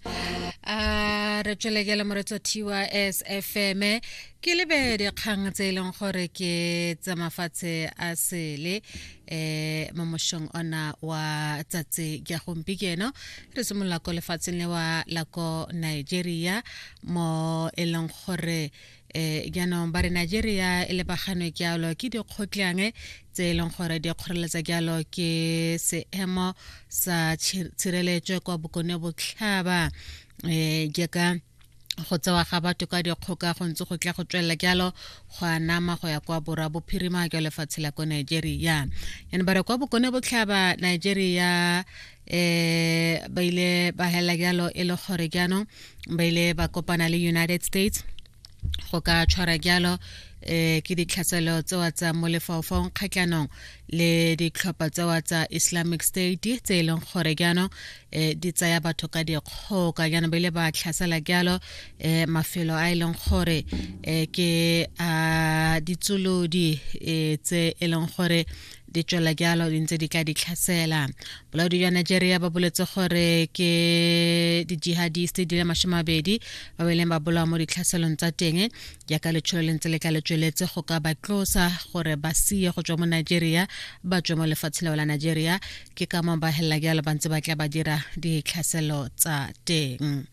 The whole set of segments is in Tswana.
a re tswelekele moretso thiwa sfm ke lebe dikgang tse e leng gore ke tsa mafatshe a sele um mo mošong ona wa tsatsi ja gompieno re simolola ko lefatsheng le wa la ko nigeria mo e leng gore e jaanong ba re nigeria e lebaganwe jalo ke dikgotlang tse e leng gore di kgoreletsa jalo ke seemo sa tshireletso kwa bokone botlhaba um jaaka go tsewa ga batho ka dikgoka go ntse go tla go tswelela jalo go a nama go ya kwa borwa bophirima jwa lefatshe la ko nigeria yane ba re kwa bokone botlhaba nigeria eh ba ile ba hela jalo e le gore jaanong ba ile ba kopana le united states go ka tshwara jalo eh ke ditlhaselo tsewa tsa mo lefaufaung kgatlhanong le ditlhopha tsewa tsa islamic state tse e leng gore jaanong um di tsaya batho ka dikgoka jaanong ba ile ba tlhasela jalo um mafelo a e leng gore um ke a ditsolodi um tse e leng gore di tswela jalo di ntse di tla di tlhasela bolaodi jwa nigeria ba boletse gore ke di-jihadist di le masome mabedi ba ba ileng ba bolawa mo ditlhaselong tsa teng jaaka letsholo le ntse le tla le tsweletse go ka ba tlosa gore ba sie go tswa mo nigeria ba tswe mo lefatshe leo la nigeria ke ka moo ba helela jalo ba ntse ba tla ba dira ditlhaselo tsa teng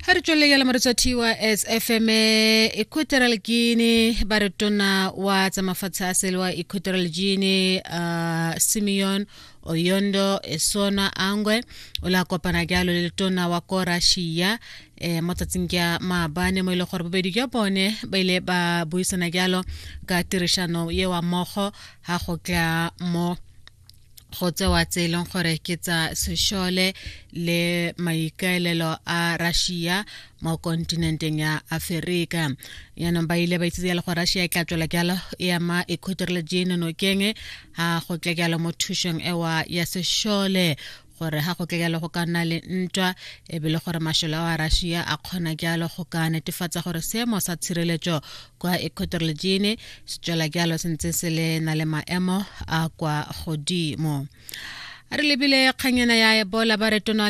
ga re tswelele ya lamaretso thiwa as fm equatorial guine ba re tona wa tsa mafatshe a sele wa equatorial guine uh, simeon oyondo esona angwe o la kopana jalo le tona wa ko russia eh, mo tsatsing ka maabane mo e leng gore bobedi jwa bone ba ile ba buisana jalo ka tirišano ye wa mogo ga go tla mo go tsewa tse e leng gore ke tsa sešole le maikaelelo a russia mo kontinenteng ya aferika yaanong ba ile ba itsitse jalo go russia e tla tswela jalo e ama equator le jane nokeng ga go tle jalo mo thušong ewa ya sešole gore ga go tlekele go ka nna le ntwa e be le gore mashelo a russia a kgona jalo go ka netefatsa gore seemo sa tshireletso kwa ecotorlegine se tswela jalo se ntse se le na le maemo a kwa godimo re lebile kganyana ya ebola ba re tona